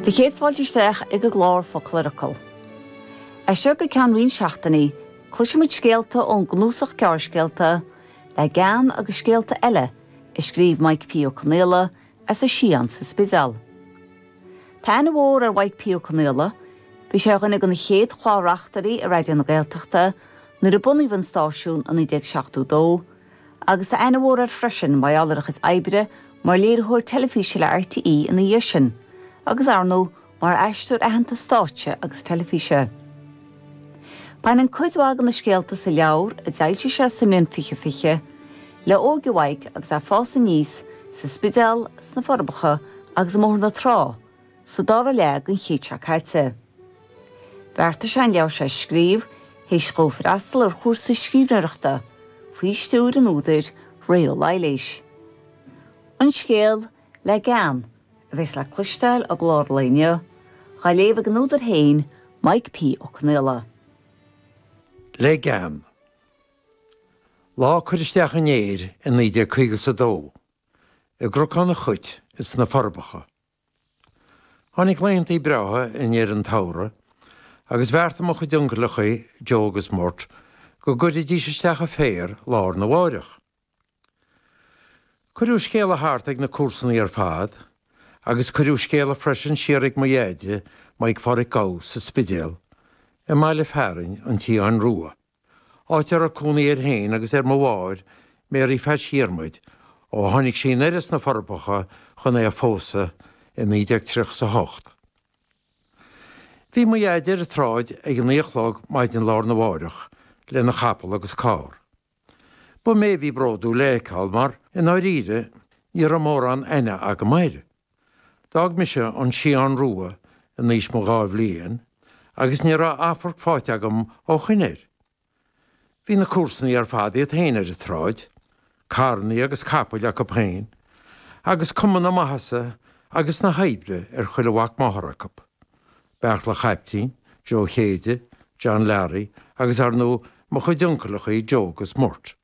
Do chéad fáilte isteach ag an gclár Focal ar Fhocal, as seo go ceann roinnt seachtainí, cloisfidh muid scéalta ón gcnuasach gearrscéalta Le Gean agus Scéalta Eile a scríobh Maidhc P. Ó Conaola as an Sián sa Spidéal. Tá aithne mhór ar Mhaidhc P. Ó Conaola, bhí sé ar dhuine de na chéad chlár-reachtairí i Raidió na Gaeltachta nuair a bunaíodh an stáisiún i 1972, agus tá aithne mhór air freisin mar gheall ar a chuid oibre mar léiritheoir teilifíse le RTÉ ina dhiaidh sin, agus, ar ndóigh, mar aisteoir aitheanta stáitse agus teilifíse. Baineann cuid mhaith de na scéalta sa leabhar, a d'fhoilsigh sé sa mbliain 2020, le hóige Mhaidhc agus é ag fás aníos sa Spidéal, sna Forbacha agus i mBóthar na Trá, sa dara leath den chéad seo caite. Bheartaigh sé an leabhar seo a scríobh théis dhó freastal ar chúrsa scríbhneoireachta faoi stiúir an údair Ré Ó Laighléis. An scéal, le gean, a bheas le cloisteáil i gclár lae inniu, dhá léamh ag an údar féin, Maidhc P. Ó Conaola. Le gean. Lá cur isteach an fhéir i 1952. I gCnocán an Chait, ins na Forbacha. Tháinig laethanta breátha i ndeireadh an tsamhraidh, agus bheartaigh mo chuid uncaileachaí, Joe agus Murt, go gcuirfidís isteach an féar lá arna mháireach. Cuireadh scéala thart ag na comharsanaí ar fad, agus cuireadh scéala freisin siar ag mo dheaide, Maidhc Phádhraic Gough, sa Spidéal, i mbaile fearainn an tSiáin Rua. áit a raibh cónaí air féin agus ar mo mháthair, Mary Phatch Dhiarmuid, ó tháinig sí anoir as na Forbacha chun é a phósadh i 1938. Bhí mo dheaide ar an tsráid ag a naoi a chlog maidin lá arna mháireach lena chapall agus carr. Ba mé a bhí bródúil é a fheiceáil mar, i ndáiríre, ní raibh mórán aithne agam air. D'fhág mise an Sián Rua in aois mo dhá bhliain agus ní raibh amharc faighte agam ó shoin air. Bhí na comharsanaí ar fad iad féin ar an tsráid, carrannaí agus capaill acu féin, agus cuma na maitheasa agus na hoibre ar chuile mhac máthar acu. Beartla Chaiptín, Joe Chéide, John Learaí agus, ar ndú, mo chuid uncaileachaí Joe 'gus Murt.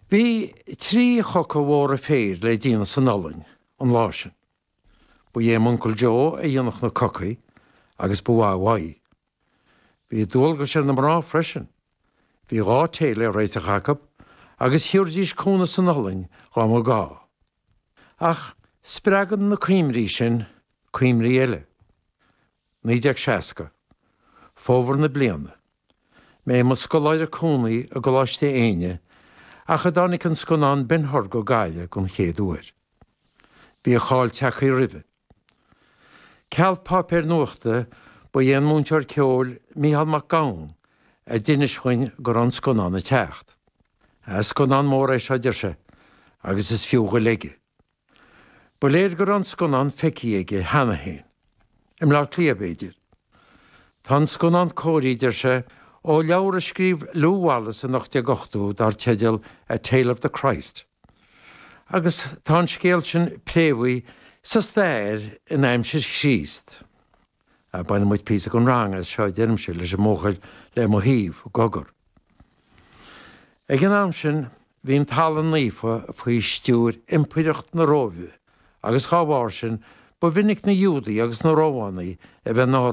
Bhí trí choca mhóra féir le déanamh san iothlainn an lá sin. Ba é m'uncail Joe a dhéanfadh na cocaí agus ba mhaith uaidh. Bhí dualgais ar na mná freisin. Bhí dhá téad le réiteach acu agus thiúraidís cúnamh san olann dhá mba gá. Ach spreagann na cuimhní sin cuimhní eile. 1960. Fómhar na bliana. Mé i mo scoláire cónaí i gColáiste Éinne nuair a tháinig an scannán Ben Hur go Gaillimh den chéad uair. Bhí a cháil tagthaí roimhe. Ceal páipéir nuachta, ba é an múinteoir ceoil Micheál Mac Gabhann a d'inis dhuinn go raibh an scannán a' teacht. Scannán mór é seo, deir sé, agus is fiú ghoil aige. Ba léir go raibh an scannán feicthe aige cheana féin. I mBleá Cliath, b'fhéidir. Tá an scannán cóirithe, deir sé, ó leabhar a scríobh Lew Wallace in 1880 dar teideal A Tale of the Christ. agus tá an scéal sin préamhaithe sa stair in aimsir Chríost. Bainfidh muid píosa gan rang as seo, a deirimse leis an mbuachaill le mo thaobh, i gcogar. Ag an am sin, bhí an Talamh Naofa faoi stiúir Impireacht na Róimhe, agus dá bharr sin, ba mhinic na Giúdaigh agus na Rómhánaigh a bheith ina.